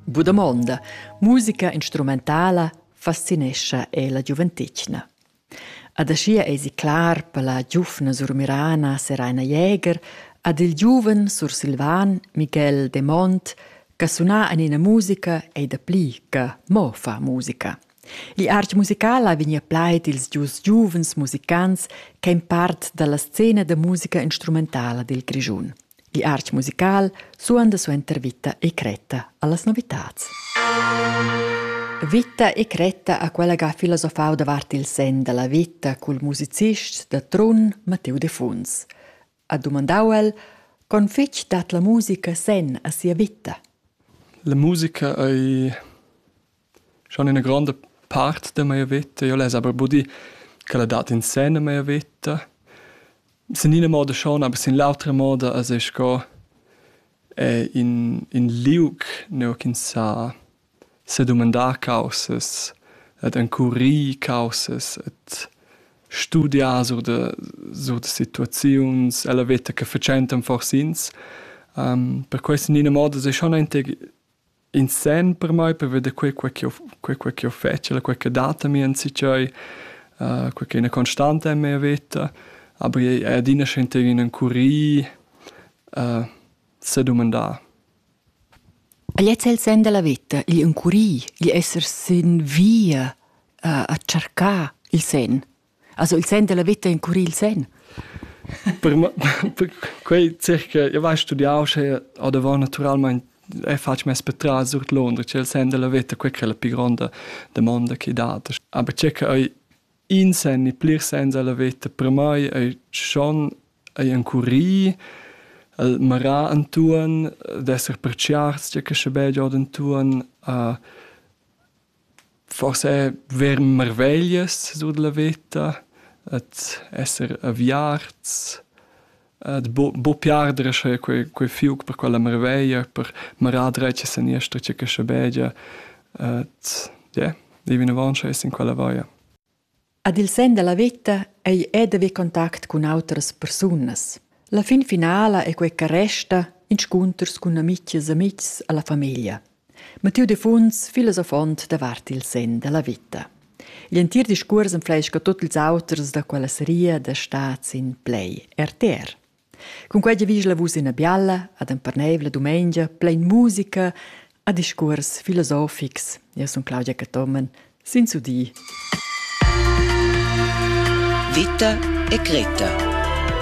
Bu damonda, musica instrumentala fascinescha e la giuventetgna. Ad aschia eisi clar per la giuvna surmirana Seraina Jäger ad il giuven sursilvan Miguel de Mont che suna en ina musica ei da pli che mo fa musica. L'art musical ha vegnì a plaid ils dus giuvens musicants ch'èn part da la scena da musica instrumentala dil Grischun. L'art musical suonda suenter Vita e cretta allas novitads. Vita e cretta ha quella che ha filosofau davart il sen dalla vita cul musicist da Trun Matteo de Funs. ha dumandau el, con fetg dat la musica senn a sia vita. La musica ei schon ina grande part de mia vita. Io les aber budi che la dat in sen a mia vita. Sin ina moda schon, aber sin l'autra moda as es sco eh, in, in liug neu ch'ins sa sedumandar caussas ed encurir caussas ed studiar sur da sur da situaziuns ella veta che fatschentan fors'ins. per quest in ina moda sai schon aunc in senn per mai per veder quei quei ch'jeu quei quei ch'jeu fetsch e quei che dat a mi enzatgei, quei ch'è ina constanta en mia veta. Aber è adina schön encurir, sedumandar. E gliez el sen dalla veta, gli encurir, gli esser sin via a, a tschercar il sen. Also il sen della veta encurir il sen. per, per quei circa, io vai studiau sche a da war naturalmente e faccio mes per tras sur Londra, c'è il sen della vita, quella che è la più grande domanda che date. Aber circa In sen e plirs sens a la veta per mai ei schon ei encurì, el marà entuorn, d'esser pertgiarts tgei che sche bein giod entuorn, a forse ver marveglias sur dalla veta, ad esser aviarts, Ed buc buc pli arder e sche quei quei fiug per quella marveglia, per marar dretg e seniester tge che schabegia. Ed ie, dei vinavon schess in quella vaia. Ad il sen dalla veta ei ed haver contact cun autras persunas. La fin finala ei quei che resta inscunters cun amitgs e amitgs alla famiglia. Mattiu Defuns, filosofont davart il sen della vita. Gl'entir discuors enfleisca tot ils auters da quella seria da stats in play RTR. Con quei giavischla vus ina bialla, ad emperneivla dumengia, plein musica, a discuors filosofics. Io sun Claudia Cattomen, sin su di. Vita e Greta